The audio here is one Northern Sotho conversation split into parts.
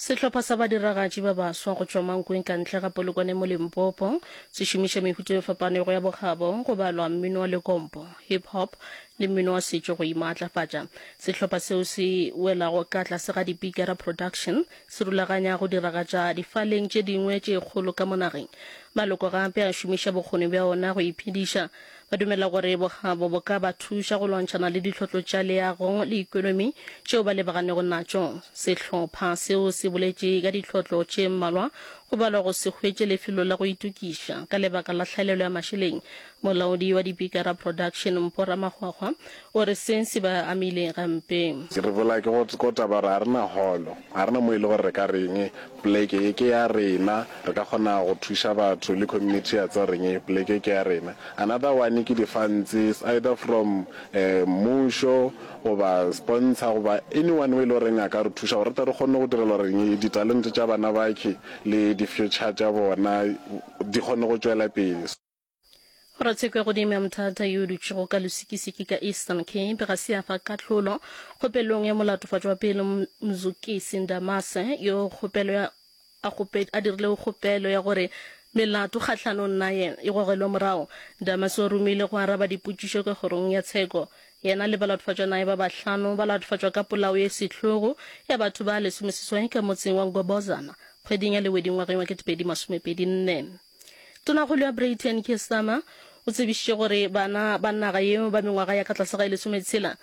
sehlopha sa badiragatši ba baswa go tšwa mankweng ka ntle ga polokwane mo limpopo se šomiša mehuta e fapanego ya bokgabo go balwa mmino wa lekompo hip hop le mmino wa setšo go imaatlafatša sehlopha seo se welago ka tlase ga dipikara production se rulaganya go diragatša difaleng tše dingwe tše kgolo ka monageng maloko gape a šomiša bokgoni bja ona go iphediša Ba dumela gore bokgabo bo ka ba thuša go lwantšhana le ditlhotlo tša leago le ekonomi tšeo ba lebagannego natšo. Sehlopha seo se boletše ka ditlhotlo tše mmalwa go balwa go se hwetše lefelo la go itokiša ka lebaka la hlaelelo ya mašeleng. Molaodi wa Dipikara Production, Mpo Ramahwahwa, O re seng se ba amile gampe. Re bola ke go ko taba gore ga re na holo, ga re na mo e le gore re ka reng poleke ye ke ya rena, re ka kgona go thuša batho le community ya tsa reng poleke ke ya rena. Another one ke di funds either from mmušo goba sponsor goba anyone o e le goreng a ka re thuša gore re tle re kgone go direla gore reng di talente tša bana bakhe le di future tša bona di kgone go tšwela pele. Ratshekwe godimo ya mothata yo o dutšego ka losikisiki ka Eastern Cape ga se ya fa kahlolo kgopelong ya molatofatšo wa pele Mzukisi Ndamase yo kgopelo ya a, kgope, a dirilego kgopelo ya gore melato kgahlanong naye e gogelwe morago. Ndamase o romile go araba dipotšišo ka kgorong ya tsheko. Yena le balatofatšwa naye ba bahlano ba latofatšwa ka polao ye sehlogo ya batho ba lesomeseswai ka motseng wa Ngobozana kgweding ya Lewedi ngwageng wa 2024. Tonakgolo ya Breyten Keir Starmer o tsebišitše gore bana ba naga yeo ba mengwaga ya ka tlase ga e lesometshela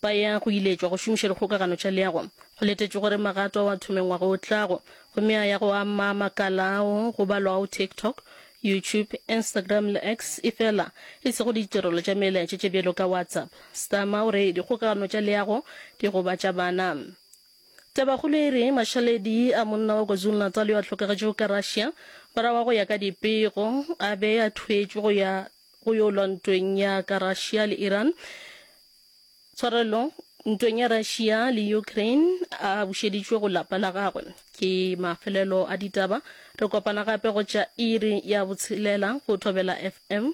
ba ya go iletšwa go šomiša dikgokagano tša leago. Go letetšwe gore magato ao a thome ngwaga o tlago gomme a ya go ama makala ao go balwago TikTok, YouTube, Instagram le X efela e sego ditirelo tša melaetša tše bjalo ka WhatsApp. Starmer o re dikgokagano tša leago di gobatša bana. Tabakgolo e re mašaledi a monna wa KwaZulu-Natal yo a hlokagetšego ka Russia morago ga go ya ka dipego a be a thweetšwe go ya go yo lwa ntweng ya ka Russia le Iran, tshwarelo, ntweng ya Russia le Ukraine a bušeditšwe go lapa la gagwe. Ke mafelelo a ditaba. Re kopana gape go tša iri ya botshelela go Thobela FM.